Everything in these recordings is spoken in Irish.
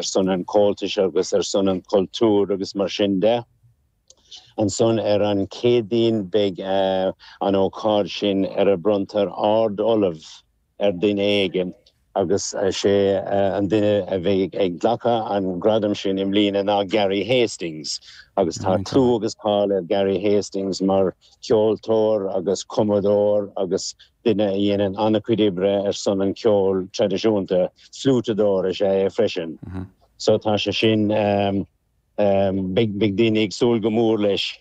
ar son an Chomhaltais agus ar son an chultúir agus mar sin de. Ansan ar an Chéadaoin beidh an ócáid sin ar a bronntar Ard-Ollamh ar duine éigin agus sé an duine a bheidh ag glacadh an gradam sin i mbliana ná Gary Hastings agus tá clú agus cáil ar Gary Hastings mar cheoltóir agus cumadóir agus Duine a dhéanann an-chuid oibre ar son an cheoil traidisiúnta, fliúiteadóir is ea é freisin. So tá sé sin, beidh daoine ag súil go mór leis.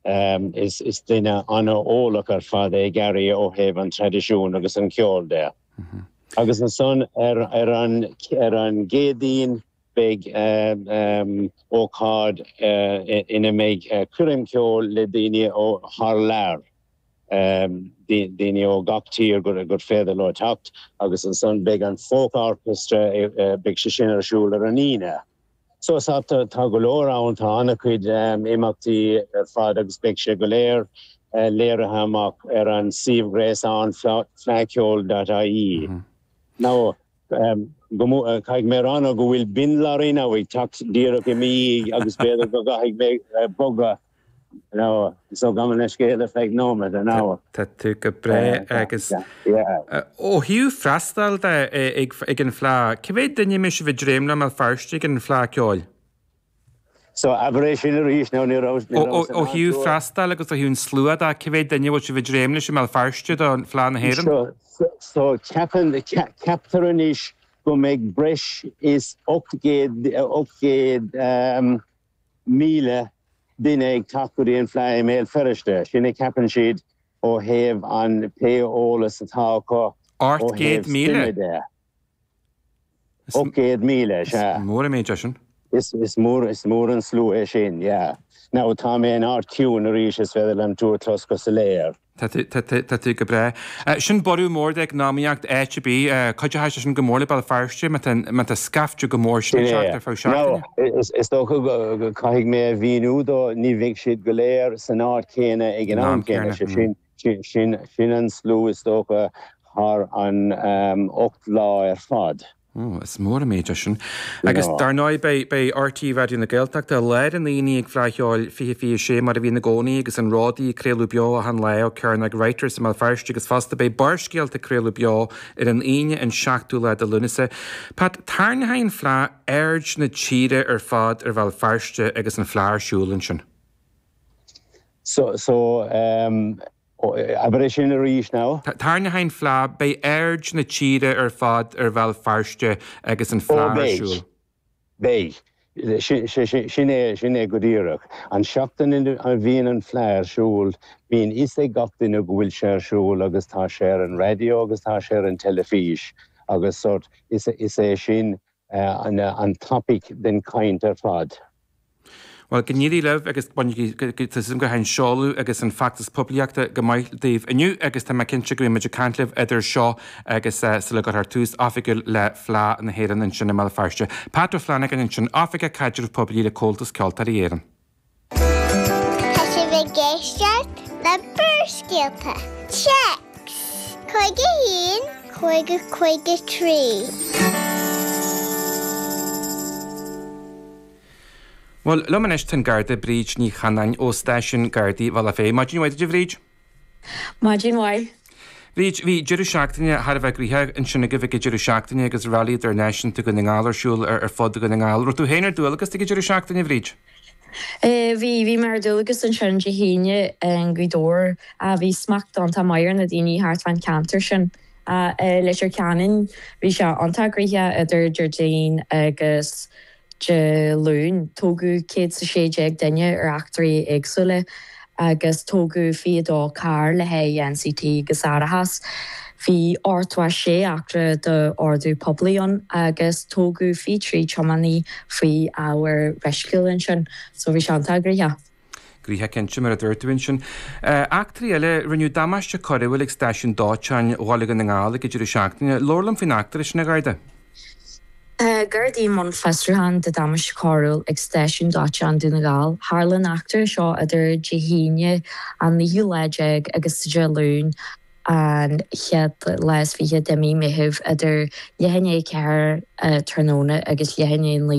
Is duine an-eolach ar fad é Gary ó thaobh an traidisiúin agus an cheoil de. Agus ansan ar an gCéadaoin beidh ócáid ina mbeidh coirm ceoil le daoine ó thar lear. daoine ó gach tír gur féidir leo teacht agus ansan beidh an Folk Orchestra, beidh sé sin ar siúl ar an Aoine. So tá go leor ann, tá an-chuid imeachtaí ar fad agus beidh sé go léir léirithe amach ar an suíomh ghréasáin fleadhcheoil dot ie. Now, caithfidh mé a rá nó go bhfuil bin lorry now ag teacht díreach i mo dhiaidh agus b'fhéidir go gcaithfidh mé bogadh! Tá tú go breá agus ó thaobh freastail de ag an Fleá, cé mhéad duine a mbeidh sibh ag dréim leo i mBéal Feirste ag an Fleá ceoil? Ó thaobh freastail agus ó thaobh an slua de, cé mhéad duine a bhfuil sibh ag dréim leis i mBéal Feirste do Fleá na hÉireann? So ceapann, ceaptar anois go mbeidh breis is ocht gcéad, ocht gcéad, míle duine ag teacht go dtí an fleadh i mBéal Feirste, sin a cheapann siad ó thaobh an pé eolas atá acu ó thaobh suime de. Ocht gcéad míle, sea. Is mór an méid é sin. Is mór, is mór an slua é sin, yeah. Now, tá mé in áit chiúin arís, is féidir liom tú a chlos go soiléir. Tá tú, tá tú, tá tú go breá. Sin borradh mór do eacnamaíocht áit ar bith. Cuideoidh sé sin go mór le Béal Feirste má tá, má tá scaifte go mór sin Sin ag é. teacht ar feadh Nó, seachtaine. is, is dócha go, go, caithfidh mé a mhíniú dó, ní bheidh siad go léir san áit chéanna ag an San am am chéanna. céanna. Sé sin, sin, sin, sin an slua is dócha thar an, ehm, ocht lá ar fad. Ó, is mór an méid é sin. Agus dar ndóigh, beidh RTÉ Raidió na Gaeltachta i lár an aonaigh ag Fleadh Cheoil 2026 mar a bhíonn i gcónaí agus Rónán ag craoladh beo achan lá ó Cearnóg Writers i mBéal Feirste agus fosta beidh Barrscéalta ag craoladh beo ar an Aoine an 7ú lá de Lúnasa. Pat, tarrainghidh an Fleadh aird na tíre ar fad ar Bhéal Feirste agus an Fleadh ar siúl ansin. So, so, um. Oh, abair é sin arís now. Tarraingeoidh an fleá, beidh aird na tíre ar fad ar Bhéal Feirste agus an fleá ar siúl. Ó beidh, beidh. Sin é, sin é go díreach. An tseachtain a bhíonn an fleá ar siúl, bíonn a fhios ag gach duine go bhfuil sé ar siúl agus tá sé ar an raidió agus tá sé ar an teilifís agus sórt, is, is é sin, an topic den chaint ar fad. Bhuel, go n-éirí libh agus bainigí, tá súil agam go rachaidh an seoladh agus an feachtas poiblíochta go maith daoibh inniu agus tá mé cinnte go mbeidh muid ag caint libh idir seo agus sula gcuirthear tús oifigiúil le Fleadh na hÉireann ansin i mBéal Feirste. Pat Ó Flannagáin ansin, Oifigeach Caidreamh Poiblí le Comhaltas Ceoltóirí Éireann. Tá sibh ag éisteacht le Barrscéalta, téacs, 51, 50, 53. Bhuel, liom anois tá an Garda Bríd Ní Chanáin ó stáisiún Gardaí Bhealach Féich. Maidin mhaith duit, a Bhríd. Maidin mhaith. Bhí, bhí deireadh seachtaine thar a bheith gnoitheach ansin agaibh ag an deireadh seachtaine agus Rally Idirnáisiúnta Dhún na nGall ar siúl ar fud Dhún na nGall. Raibh tú féin ar dualgas ag an deireadh seachtaine, a Bhríd? Bhí, bhí mé ar dualgas ansin Dé hAoine i nGaoth Dobhair. Bhí smacht iontach maith ar na daoine thart fán cheantar sin. I Leitir Ceanainn bhí sé iontach gnoitheach idir Déardaoin agus Dé Luain, tógadh céad 's a sé déag duine ar eachtraí éagsúla agus tógadh 22 carr le haghaidh NCT agus árachas. Bhí thart fá sé eachtra d'ordú poiblí ann agus tógadh 23 tiománaí faoi ábhar meisciúil ansin, so bhí sé iontach gnoitheach. Gnoitheach cinnte, mar a dúirt tú ansin. Eachtraí eile, rinneadh damáiste coiriúil ag stáisiún dóiteáin Bhaile Dhún na nGall ag an deireadh seachtaine. Labhair liom faoin eachtra sin, a Gharda. Gardaí i mbun fiosrúcháin do damáiste coiriúil ag stáisiún dóiteáin Dhún na nGall. Tharla an eachtra seo idir Dé hAoine an naoú lá déag agus Dé Luain an chéad lá is fiche de mhí Meithimh idir leath i ndiaidh a ceathair tráthnóna agus leath i ndiaidh a naoi